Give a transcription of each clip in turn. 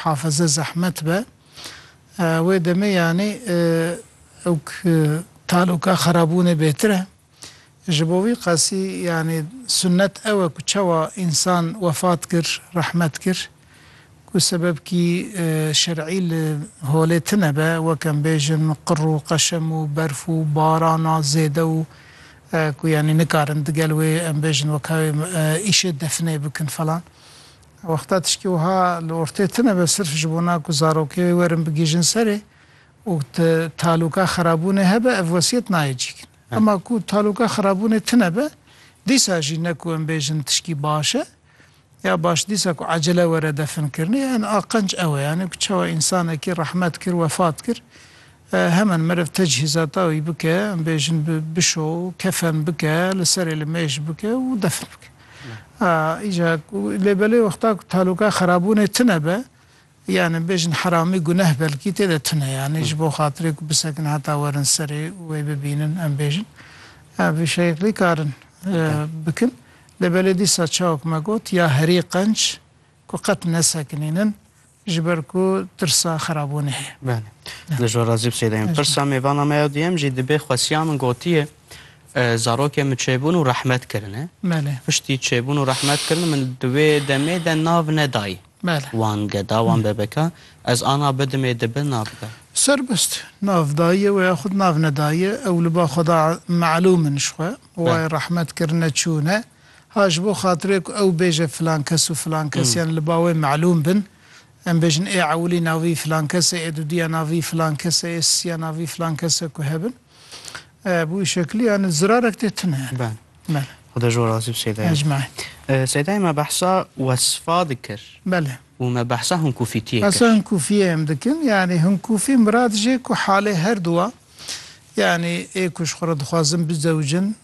Hafize zehmet be. Wê demê yanî ewk taloka xerabûnê bêtir e. Ji bo vî qasî yanî sunnet ew e ku çawa însan wefat kir, rehmet kir, ku sebebkî şer'î li holê tine be, wek em bêjin qir û qeşem û berf û barana zêde û ku yanî nikarin digel wê em bêjin weka wê îşê definê bikin falan. Wexta tiştî wiha li ortê tine be sirf ji bo na ku zarokê wê werin bigihîjin serê û tu talûka xerabûnê hebe ev wesiyet nayê cîkin. Hema ku talûka xerabûnê tine be dîsa jî ne ku em bêjin tiştî baş e ya baş dîsa ku ecele were definkirinê. Yan aqenc ew e yanî ku çawa însanekî rehmet kir wefat kir. Hemen meriv tecihîzata wî bike, em bêjin bi bişo, kefen bike, li serê li mêj bike û defn bike. Îca ku lê belê wexta ku taloka xerabûnê tune be, yani em bêjin heramî guneh belkî tê de tune yani ji bo xatirê ku bisekin heta werin serê û wê bibînin em bêjin vî şeklî karin bikin. Lê belê dîsa çawa ku me got ya herî qenc ku qet nesekinînin, Ji ber ku tirsa xerabûnê heye. Belê. Li jor razî bi sêdeyim. Pirsa me vana me ya duyem jî dibe xwesiya min gotiye zarokê min çêbûn û rehmet kirine. Belê. Piştî çêbûn û rehmet kirine min di wê demê de nav nedayî. Belê. Wan geda, wan bebeka. Ez ana bidimê dibe nav da. Serbest. Nav dayiye we yaxud nav nedayiye ew li ba xwe da melûm in ji xwe. Wayê rehmet kirine çûne. Ha ji bo xatirê ku ew bêje filan kes û filan kes yan li ba wê melûm bin, em bêjin ê ewilî navî filan kes e, ê dudîya navî filan kes e, ê sisiya navî filan kes e ku hebin. Bi wî şekilî yani zirarek tê tune yani. Bele. Bele. Xuda ji we razî bi Seyda Yemîn. Ecmaîn. Seyda Yemîn me behsa wesfa dikir. Bele. Û me behsa hinkûfîtiyê kir. Behsa hinkûfiyê em dikin. Yani hinkûfî mirad jê ku halê herduwa yani ê ku ji xwe re dixwazin bizewicin,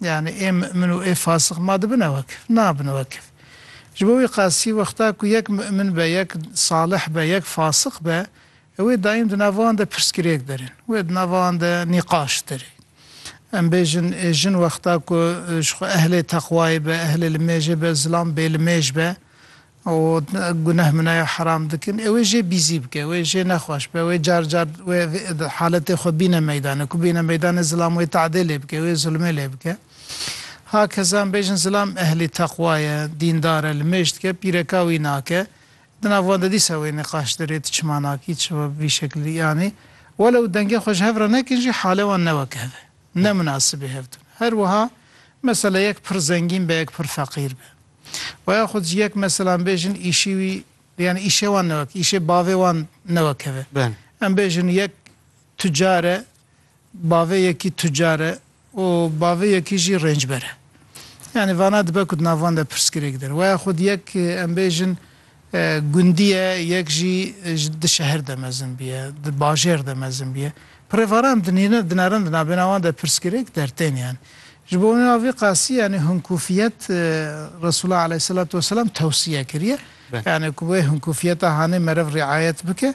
Yanî ê mu'min û ê fasix ma dibin e wekif? Nabin wekif. Ji bo wî qasî wexta ku yek mu'min be, yek salih be, yek fasix be, ew ê daîm di nav wan de pirsgirêk derên. Wê di nava wan de nîqaş derê. Em bêjin ê jin wexta ku ji xwe ehlê teqwayê be, ehlê limêjê be, zilam bêlimêj be, Û guneh min e ya heram dikin ê wê jê bîzî bike, wê jê nexweş be, wê car car wê haletê xwe bîne meydanê, ku bîne meydanê zilam wê te'dê lê bike, wê zulmê lê bike. Ha kesan bêjin zilam ehlî teqwa ye, dîndar e, li mêj dike, pîre ka wî nake. Di nav wan de dîsa wê nîqaş derê tu çima nakî, tu bi vî şeklî yanî. Welew dengê xwe ji hev re nekin jî halê wan ne weke hev e. Ne minasibê hev tune. Her wiha mesele yek pir zengîn be, yek pir feqîr be. Wa ya xwe ji yek meselan bêjin îşî wî yani îşê wan newek îşê bavê wan newekeve. Em bêjin yek tucar e, bavê yekî tucar e û bavê yekî jî rêncber e. Yani vana dibe ku di nav wan de pirsgirêk din. Wa ya xwe di yek em bêjin Gundî ye, yek jî di şehir de mezin bûye, di bajêr de mezin bûye. Pirêvaran dinerin di navbêna wan de pirsgirêk dertên yan. Ji bo nêna vî qasî yanî hinkûfiyet Resûla aleyhîselatu weselam tewsîye kiriye. Yanî ku wê hinkûfiyeta hanê meriv rîayet bike.